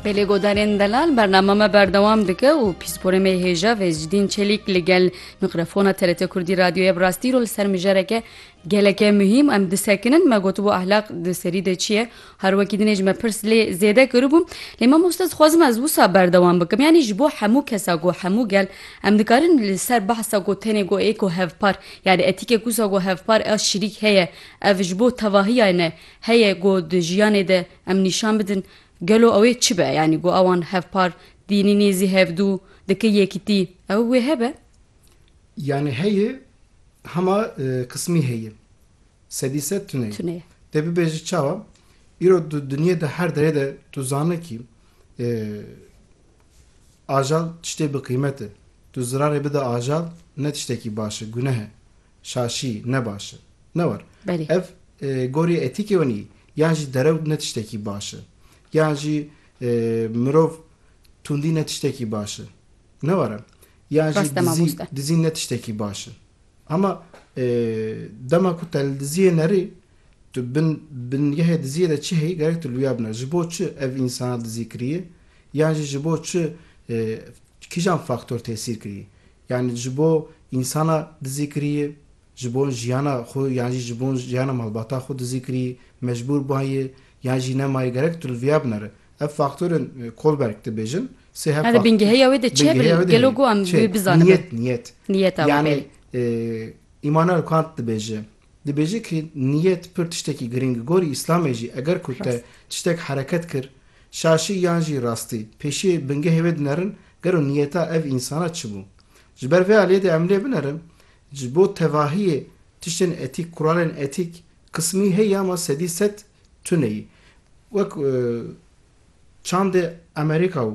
Belê godarên delal bernama me berdewam dike û pîsporê me hêja Vêzdîn Çelîk li gel mikrofona TRT Kurdî radyoyê bi rastî rol ser mijareke geleke muhîm em disekinin me gotibû ehlaq di serî de çi ye her wekî dinê ji me pirs lê zêde kiribû lê me mosta dixwazim ez wisa berdewam bikim yanî ji bo hemû kesa ku hemû gel em dikarin li ser behsa ku tenê ku êko hevpar yanî etîkek wisa ku hevpar ev şirîk heye ev ji bo tevahiya ne Heye ku di jiyanê de em nîşan bidin gelo ew ê çi be yanî ku ewan hevpar dînî nêzî hevdû dike yekîtî ew wê hebe? Yanî heye hema qismî heye sedî sed tune ye. Tune ye. Te bibêje çawa? Îro di dinyê de her derê de tu zane kî ajal tiştê bi qîmet e. Tu zirarê bide ajal ne tiştekî baş e, guneh e. Şaşî, ne baş e. Ne war. Belê. Ev gorî etîkê we nîyî. Yan jî derew ne tiştekî baş e. Yan jî mirov tundî ne tiştekî baş e. Ne war e. Yan jî dizî, dizîn ne tiştekî baş e. Ama dema ku te li diziyê nerî, tu bin bingehê diziyê de çi heyî gerek tu li wîya biner. Ji bo çi ev însana dizî kirîyê? Yan jî ji bo çi kîjan faktor tesîr kirîyê? Yanî ji bo însana dizî kirîyê, ji bo jiyana xwe yan jî ji bo jiyana malbata xwe dizî kirîyê, mecbûr bûayê yan jî nemayê gerek tu li viya binere. Ev faktorên Kohlberg dibêjin sê hev faktor. Bingehêya wê de çi hebe li gelo ku em wê bizanibe? Niyet, niyet. Niyeta wê. Yanî Îmanuel Kant dibêje, Dibêje ki niyet pir tiştekî girîng gorî îslamê jî eger ku te tiştek hereket kir şaşî yan jî rastî pêşiyê bingehê wê dinerin gero niyeta ev însana çi bû. Ji ber vê aliyê de em lê binerin ji bo tevahiyê tiştên etîk kuralên etîk qismî heyî ama sedî sed tuneyî wek çandê Amerîka û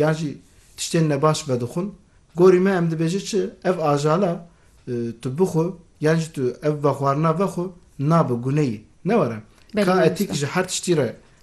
Yan jî tiştên nebaş vedixwin. Gorî me em dibêje çi, ev ajala tu bixwe yan jî tu ev vexwarina vexwe nabe, guneyê. Ne were. Ka etîk ji her tiştî re